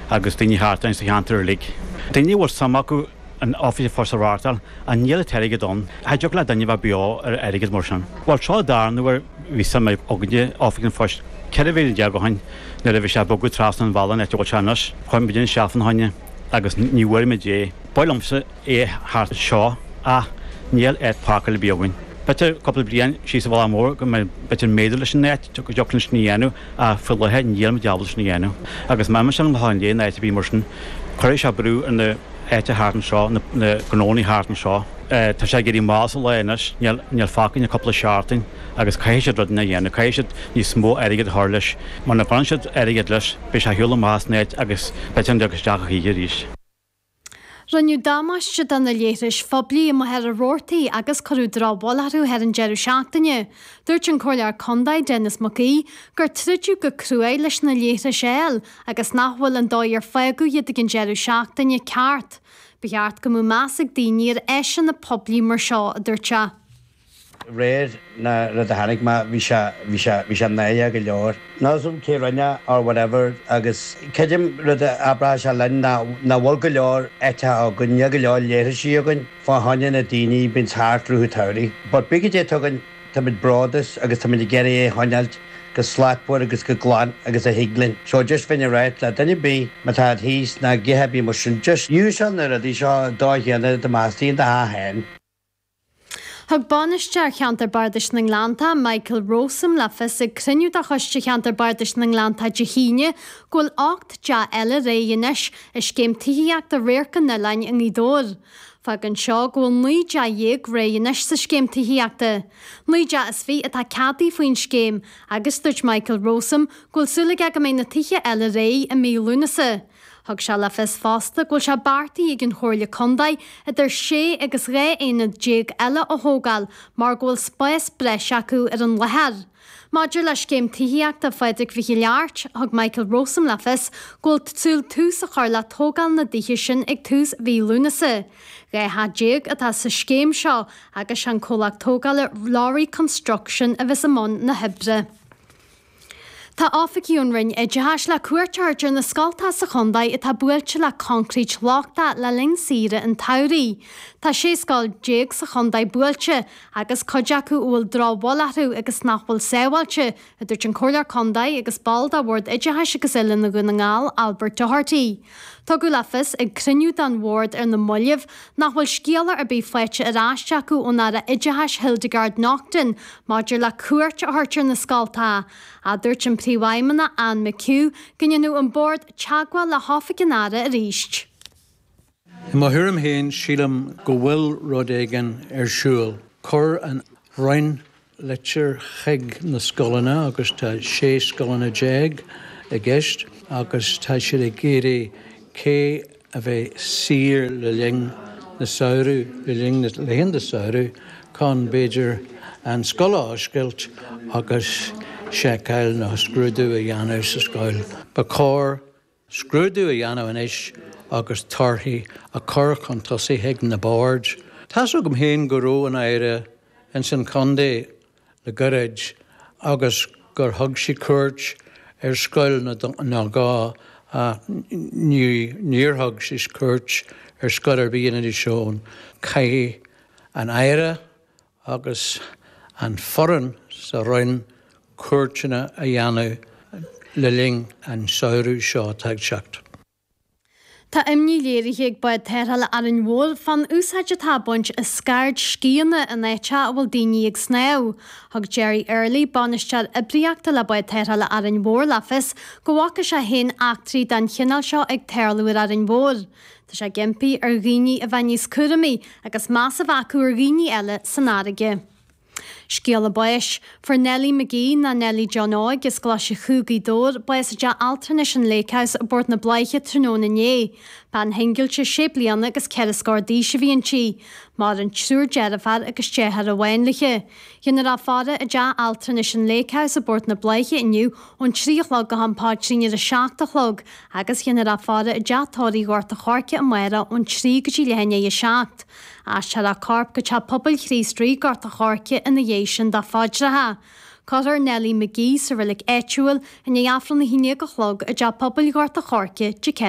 agus daoine thart orainn sa cheantar uilig. Daoine a bhfuil suim acu in oifig an phoist a reáchtáil ach níl an t-airgead ann. Cha dtiocfadh le duine bheith beo ar airgead mar sin. Bhuel, tráth dá raibh nuair a bhí suim againne in Oifig an Phoist, 14 bhliain ó shin, nuair a bhí sé ag bogadh trasna an bhealaigh in áit a bhfuil sé anois, chuir muidinne isteach fána choinne agus ní bhfuair muid é. Ba mhaith liomsa é thart anseo ach níl áit páirceála ar bith againn. B'fhéidir cúpla bliain síos an bealach mór go mb'fhéidir méadú leis an áit go dtiocfadh linn sin a dhéanamh ach faoi láthair nílimid ábalta sin a dhéanamh. Agus má imíonn an lá inné in áit a bhí mar sin, cuirfidh sé brú ar na háite thart anseo, na gnóannaí thart anseo. Tá sé ag éirí mall sa lá anois, níl fágtha againn ach cúpla seachtain agus caithfidh siad rud inteacht a dhéanamh, caithfidh siad níos mó airgead a chur leis. Muna gcuireann siad airgead leis, beidh sé ag siúl amach as an áit agus b'fhéidir nach dtiocfadh isteach a choíche arís. Rinneadh damáiste do na leithris phoiblí i Machaire Rabhartaigh agus cuireadh drochbhail orthu ar an deireadh seachtaine. Dúirt an Comhairleoir Contae, Denis Mac Aoidh, gur troideadh go cruaidh leis na leithris a fháil agus nach bhfuil an dóigh ar fágadh iad ag an deireadh seachtaine ceart. Ba cheart go mbeadh meas ag daoine ar áiseanna poiblí mar seo, a dúirt sé. réir an rud a chonaic mé, bhí sé, bhí sé, bhí sé náidhe go leor. Níl a fhios agam cé rinne é or whatever agus creidim rud a abróchadh sé linn ná nach bhfuil go leor áiteacha againn, níl go leor leithrisí againn fá choinne na daoine bíonns thart i rith an tsamhraidh. But bíodh goidé tugann táimid bródúil as agus táimid ag iarraidh é choinneáilt go slachtmhar agus go glan agus a thig linn. So just bheinn ag ráit le duine ar bith má tá siad thíos nó a dhath ar bith mar sin just úsáid na rudaí seo an dóigh chéanna dá mbeifeá istigh i do theach fhéin. Thug Bainisteoir Cheantar Bardais na nGleannta, Michael Rowsome, le fios ag cruinniú de Choiste Cheantar Bardais na nGleannta Dé hAoine go bhfuil ocht dteach eile réidh anois i scéim tithíochta Radharc an Oileáin i nGaoth Dobhair. Fágann seo go bhfuil naoi dteach dhéag réidh anois sa scéim tithíochta. Naoi dteach is fiche atá ceadaithe faoin scéim agus dúirt Michael Rowsome go bhfuil súil aige go mbeidh na tithe eile réidh i mí Lúnasa. Thug sé le fios fosta go bhfuil sé beartaithe ag an Chomhairle Contae idir sé agus 12 aonad eile a thógáil mar go bhfuil spás breise acu ar an láthair. Maidir le scéim tithíochta Phádraic Mhic Giolla Airt, thug Michael Rowsome le fios go bhfuil súil tús a chur le tógáil na dtithe sin ag tús mhí Lúnasa. 12 theach atá sa scéim seo agus sé an comhlacht tógála Lowry Construction a bheas i mbun na hoibre. Tá oifigigh ón Roinn Oideachais le cuairt a thabhairt ar na scoltacha sa chontae atá buailte le concrete lochtach le linn saoire an tsamhraidh. Tá 16 scoil sa chontae buailte agus cuid acu a bhfuil drochbhail orthu agus nach bhfuil sábháilte, a dúirt an Comhairleoir Contae agus ball de Bhord Oideachais agus Oiliúna Dhún na nGall, Albert Doherty. Tugadh le fios ag cruinniú den Bhord ar na mallaibh nach bhfuil scéala ar bith faighte ar ais acu ón Aire Oideachais Hildegarde Naughton maidir le cuairt a thabhairt ar na scoltacha, a dúirt an Príomhfheidhmeannach, Anne McHugh, go ndéanfadh an Bord teagmháil le hOifig an Aire arís. I mo thuairim féin, sílim go bhfuil rud éigin ar siúl. Chuir an Roinn litir chuig na scoileanna agus tá 16 scoileanna i gceist agus tá siad ag iarraidh cé a bheidh saor le linn na samhradh, le linn na laethanta samhradh chun, b'fhéidir, an scoil a oscailt agus seiceáil nó scrúdú a dhéanamh sa scoil. Ba chóir. scrúdú a dhéanamh anois agus torthaí a chur chun tosaigh chuig na boird. Tá's agam féin go raibh an Aire ins an chontae le gairid agus gur thug sí cuairt ar scoil nó dhó ach níor thug sí cuairt ar scoil ar bith in Inis Eoghain. Caithfidh an Aire agus an foireann sa Roinn cuairteanna a dhéanamh le linn an samhradh seo atá ag teacht. Tá imní léirithe ag Bád Tarrthála Árainn Mhór fán úsáid atá á baint as scairdscíonna in áiteacha a bhfuil daoine ag snámh. Thug Gerry Early, Bainisteoir Oibríochta le Bád Tarrthála Árainn Mhór le fios go bhfaca sé féin eachtraí den chineál seo ag tarlú ar Árainn Mhór. Tá sé ag impí ar dhaoine a bheith níos cúramaí agus meas a bheith acu ar dhaoine eile san fharraige. Scéala báis, Fuair Nellie McGee, nó Nellie John Óig, as Glaise Chú, Gaoth Dobhair, bás i dteach altranais an Lake House i bPort na Bláiche tráthnóna inné. Bean shingilte sé bliana agus ceithre scór d'aois a bhí inti. Maireann triúr deirféar agus deartháir amháin léi. Déanfar a faire i dteach altranais an Lake House i bPort na Bláiche inniu ón trí a chlog go ham paidrín ar a seacht a chlog. agus déanfar a faire i dTeach Tórraimh Ghort an Choirce amárach ón 3 go dtí leath i ndiaidh 7. Aistreofar a corp go teach pobail Chríost Rí Gort an Choirce ina dhiaidh sin fá phaidreacha. Cuirfear Nellie McGee sa reilig áitiúil i ndiaidh Aifreann a haon déag a chlog i dteach pobail Ghort an Choirce, Dé Céa.